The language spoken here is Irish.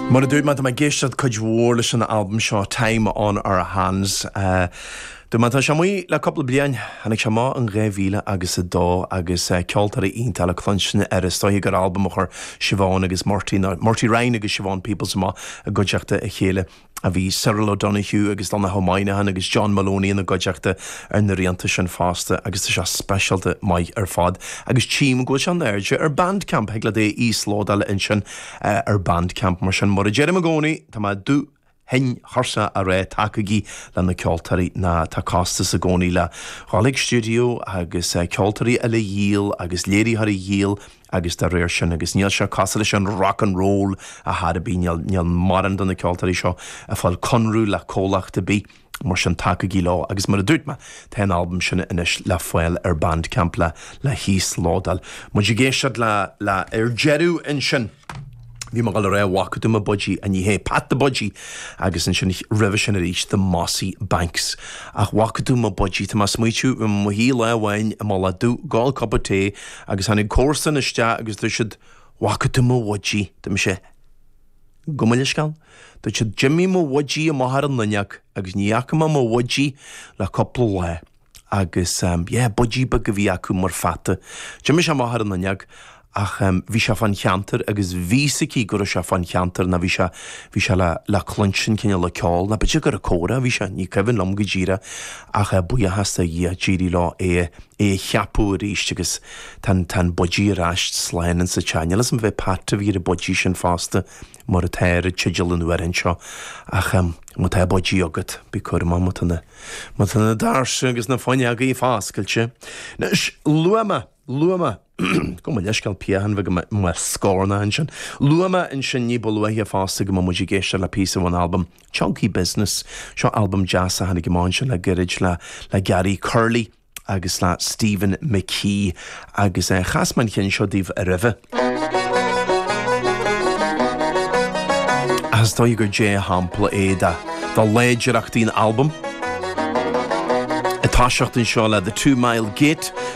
Mar a dúirt mé, tá mé ag éisteacht cuid mhór leis an albam seo, Time on Our Hands. Dúirt mé, tá sé amuigh le cúpla bliain, tháinig sé amach in dhá mhíle agus a dó, agus ceoltóirí iontacha le cluinstin air. Is dóiche gur albam a chuir Siobhán agus Murty, nó Murty Ryan agus Siobhán Peoples amach i gcuideachta a chéile. a bhí Cyril O'Donoghue agus Donogh Ó Moynihan agus John Moloney ina gcuideachta ar na rianta sin fosta agus tá sé speisialta maith ar fad agus tchím go bhfuil sé in airde ar Bandcamp, thig leat é a íoslódáil ansin ar Bandcamp. Mar sin mar a deirim i gcónaí tá mé dubh tinn tuirseach á rá tacaigí le na ceoltóirí nó tá costas i gcónaí le ghabháil chuig stiúideo agus ceoltóirí eile a dhíol agus léiritheoirí a dhíol agus dá réir sin, agus níl sé cosúil leis an rock and roll a thuilleadh, níl, níl mórán de na ceoltóirí seo ag fáil conradh le comhlacht ar bith, mar sin tacaigí leo, agus mar a dúirt mé, tá an albam sin anois le fáil ar Bandcamp le, le híoslódáil. Muid ag éisteacht le, le, ar deireadh ansin, bhí mé ag dul a rá bhfaca tú mo budgie, ach ní hé, Pat the Budgie, agus ansin roimhe sin arís, The Mossy Banks, ach bhfaca tú mo budgie, tá mé ag smaoitiú, bhí mé i mo shuí lá amháin sa bhaile, ag ól cupa tae, agus tháinig comharsa isteach agus dúirt siad bhfaca tú mo bhudgie? Dúirt mé gabh mo leithscéal. Dúirt siad d'imigh mo bhudgie amach ar an fhuinneog agus ní fhaca mé mo bhudgie le cúpla lá agus yeah budgie beag a bhí acu mar pheata. D'imigh sé amach ar an fhuinneog ach bhí sé fán cheantar agus bhí a fhios aici go raibh sé fán cheantar nó bhí sé, bhí sé le, le cluinstin cineál le ceol nó b'fhéidir gur ag comhrá a bhí sé, ní cuimhin liom go díreach ach buíochas do Dhia d'éirigh leo é a é a cheapadh arís agus tá an an budgie ar ais slán insa teach. Níl 'fhios a'm ab é Pat a bhí ar an budgie sin fosta mar atá ar an tideal an amhráin seo ach ehm má tá budgie agat bí cúramach má tá na má tá na doirse agus na fuinneogaí foscailte. Anois luaigh mé luaigh mé. Gabh mo leithscéal, piachán i mo scornach ansin. Luaigh mé ansin ní ba luaithe fosta go mbeadh muid ag éisteacht le píosa ón albam Chunky Business. Seo albam deas a tháinig amach le gairid le le Gary Curley agus le Stephen McKee agus chas mé an ceann seo daoibh roimhe. Ach is dóigh gur dea-shampla é de de láidreachtaí an albaim. Ag toiseacht anseo le The Two Mile Gate,